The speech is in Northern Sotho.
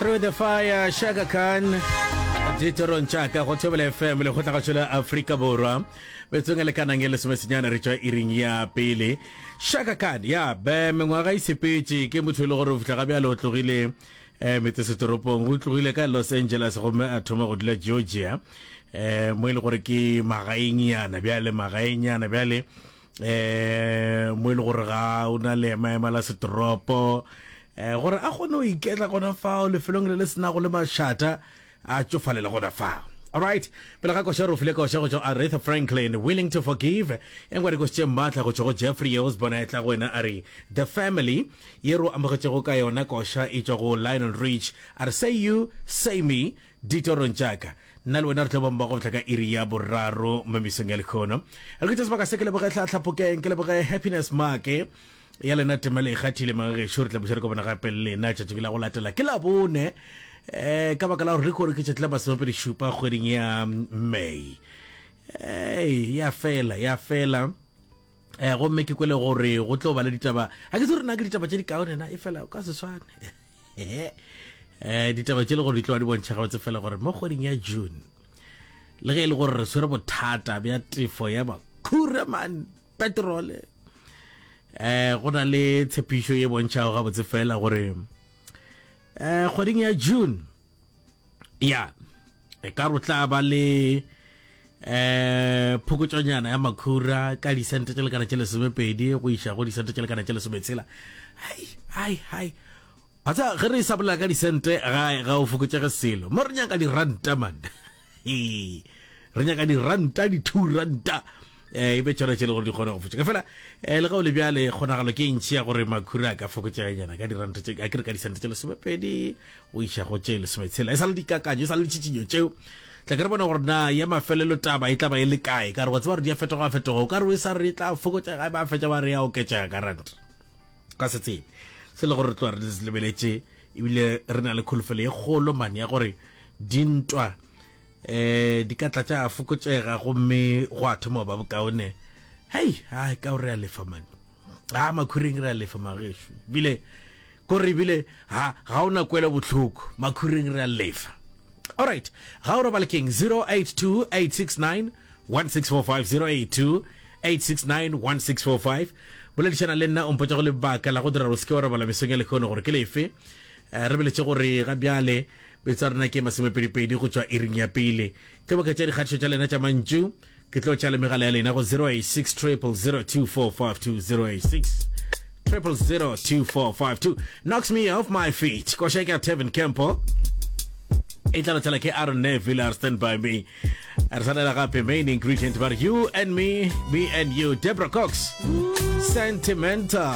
through the fire shaka khan ditorong tšaka go thobela fm le go tlagatšo la aforika borwa betsong e lekanang e lesomesenyana re tšwa iring ya pele shaka khan ya be mengwaga e sepetše ke motho e le gore o fitlha ga bjale o tlogile um eh, metsesetoropong o tlogile ka los angeles gomme a thoma go dula georgia um mo e le gore ke magaeng yana bjale magaeng yana bjale um mo e le gore ga o na le emaema la setoropo um gore a kgone go iketla gona fao lefelong le le senago le mašata a tšofalele gona fao alright pele ga koša re o file koša go tšwa aretha franklin willing to forgive e ngware kositše mmatla go tšwa go jeffrey yo osbona etla go wena a re the family ye ro amogetšego ka yona koša e tšwa go lionel rich a re say you say me Ditorong tša ka. Nna le wena re tlo ba mmogo go fihla ka iri ya boraro mo mesong ya lekgono. Re ke tša sebaka se ke leboge tlhatlhapokeng, ke leboge Happiness Maake ya lena temelo e kgathile magagešo re tla buša re kopana gape le lena tšatšing la go latela ke la bone um ka baka la gore re kore ke tšatši la masomepedi šupa kgweding ya may um ya fela ya fela Eh, gomme ke kwele gore go tlo ba le ditaba a ke se rena ke ditaba tše di kaone na e fela o ka se swane eh ditaba tše le gore di tloa di bontšha gabotse fela gore mo kgweding ya june le ge e le gore re swere bothata bja tefo ya makhura man petrole eh go na le tshepišo e bontšhago gabotse fela gore eh kgweding ya june ya e ka ro tla ba le eh phokotšonyana ya makhura ka disente tše lekana tše lesomepedi go iša go disente tše lekana tše lesometshela hai hai hai a tsa ge re sa bolela ka disente ga ga o fokotšege selo mo re nyaka diranta man Ee, re nyaka diranta, di-two ranta um e be tšona tše le gore di kgone go fetša ka fela um le gao le bjale kgonagalo ke ntši ya gore makhuri a ka fokotšeganyana ka diranta tše a ke re ka disanta tše lesomepedi o iša go tše lesometshela e sa le dikakanyo e sa le ditšhitšinyo tšeo tla ke re bona gore na ya mafelelo taba e tla ba e le kae ka re wa tseba gore di a fetoga fetoga o ka re o e sa re tla fokotšega ba fetša ba re ya oketšega ka ranta ka se tsebe se le gore re tloa re di lebeletše ebile re na le kholofelo ye kgolo mane ya gore dintwa um di ka tla tša fokotšega gomme go a thoma ba bokaone hei a ka o re a lefa mane a makhuring re a lefa magešu bile kore ebile ha ga o na kwelo botlhoko makhuring re a lefa alright ga o robalekeng 082 869 1645082869165 boledišana le nna o mpotsa go lebaka la go dira gore se ke wa robala mesong ya lekgono gore ke lefe eh, re beletše gore ga bjale betsa rena ke masomepedipedi go tšwa iring ya pele tlo boka tša dikgatišo tša lena tša mantšu ke tlo tša le megala ya lena go 086 triple 02452 triple zero two four five two knocks me off my feet. Go shake out Tevin Campbell. Italo Chalake Aaron Neville are stand by me. re tshwanela gape main ingredient ba you and me me and you debra cox sentimental